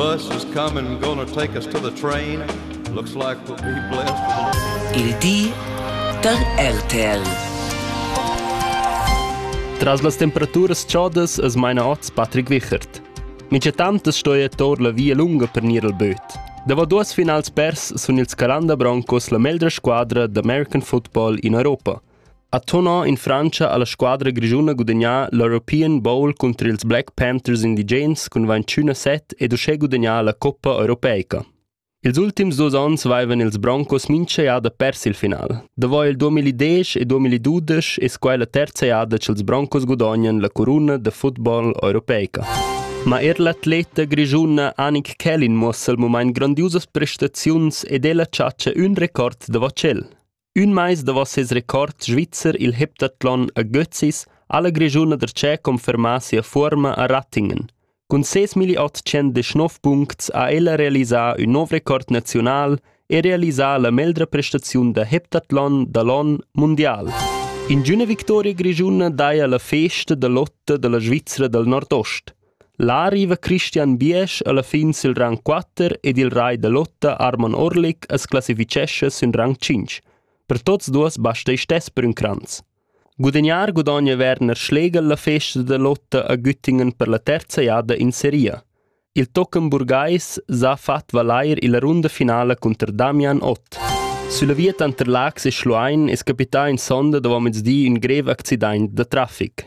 bus has come and gone to take us to the train. Looks like we'll be blessed. Il di da RTL. Tras las temperaturas chodas es meina oz Patrick Wichert. Micetant es stoia tor la via lunga per gnir al böt. Davo duos finals pers sun ils Calanda Broncos la meglra squadra d'American football in Europa. Ha tenor in Frantscha ha la squadra grischuna gudagnà l'European Bowl cunter ils Black Panthers indigens cun ventschüna set ed uschè gudagnà la coppa europeica. Ils ultims dus onns vaivan ils Broncos mincha jada pers il final. Davo il 2010 e 2012 es quai la terza jada ch'ils Broncos gudognan la coruna da football europeica. Ma er l'atleta grischuna Annik Kellin muossa il mumaint grandiusas prestaziuns ed el ha chatcha ün record da vacel. Ün mais davo ses record svizzer il heptathlon a Götzis ha la Grischuna da Tschè confermà sia fuorma a Rattingen. Cun ses 1819 puncts ha ella realisà ün nouv record naziunal e realisà la meglra prestaziun da heptathlon da l'on mundial. Ingüna victoria grischuna daja la festa da lotta da la Svizra dal nordost. Là riva Christian Biesch alla fin sil rang quatter ed il rai da lotta Arman Orlik as classifichescha sün rang tschinch. Per tuots duos basta isch stess per ün cranz. Gudagnar gudogna Werner Schlegel la festa da lotta a Güttingen per la terza jada in seria. Il tochen burgais s'ha fat valair illa runda finala cunter Damian Ott. Sulla via tanter Lax e Schluein es capità in sonda dovo mezdi ün grev accidaint da trafic.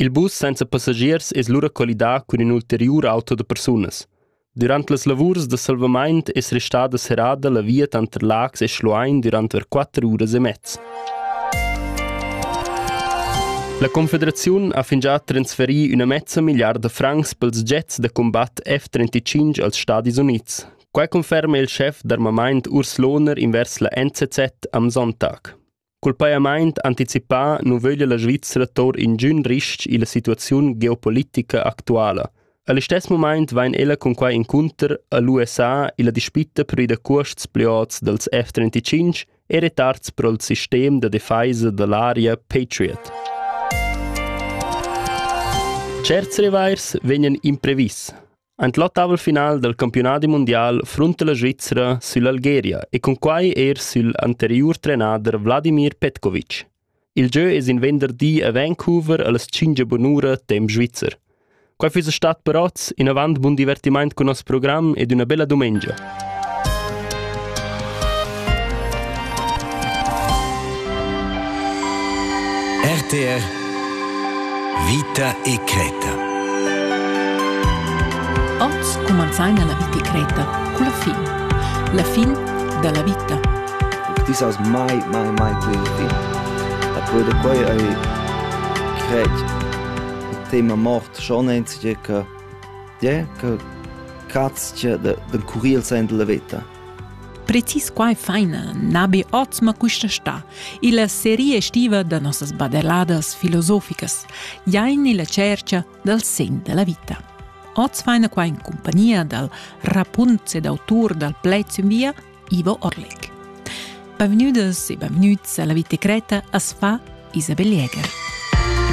Il bus senza passagiers es lura collidà cun ün ulteriur auto da persunas. Dürant las lavurs da salvamaint es restada serrada la via tanter Laax e Schluein dürant ver quatter uras e mez. La Confederaziun ha fingià transferì üna mezza milliarda francs pels jets da combatt F-35 als Stadis Units. Quai conferma il schef d'armamaint Urs Lohner invers la NZZ am Sonntag. Cul pajamaint anticipà nu vöglia la Svizra tour ingün ris-ch illa situaziun geopolitica actuala. A listess mumaint vain ella cun quai incunter a l'USA illa dispitta per ir da cuosts plü ots dals F-35 e retards pro'l sistem da defaisa da l'aria Patriot. Tscherts revair vegnan imprevis. Ein l'ottaval final dal campiunadi mundial frunta la Svizra süll'Algeria e cunquai er sül anteriur trenader Vladimir Petkovic. Il gieu es in venderdi a Vancouver allas tschingia bunura temp svizzer. Quai füss stat per oz inavant bun divertimaint cun nos program ed üna bella dumengia. RTR Vita e Creta. Oz cumanzaina la vita e Creta culla fin. La fin da la vita. This was my, my, my little thing. A quel de quei ei crec il tema mort schon einzige che Tgè che catschia d'encurir sain dalla veta. Precis quai faina na be oz ma quista sta. Illa seria estiva da nossas badelladas filosoficas, jain illa cercha dal sen della vita. Oz faina qua in compagnia dal rapunz ed autur dal plez in via, Ivo Orlek. Benvenudas e benvenuts alla Vita Creta as fa Isabel Jäger.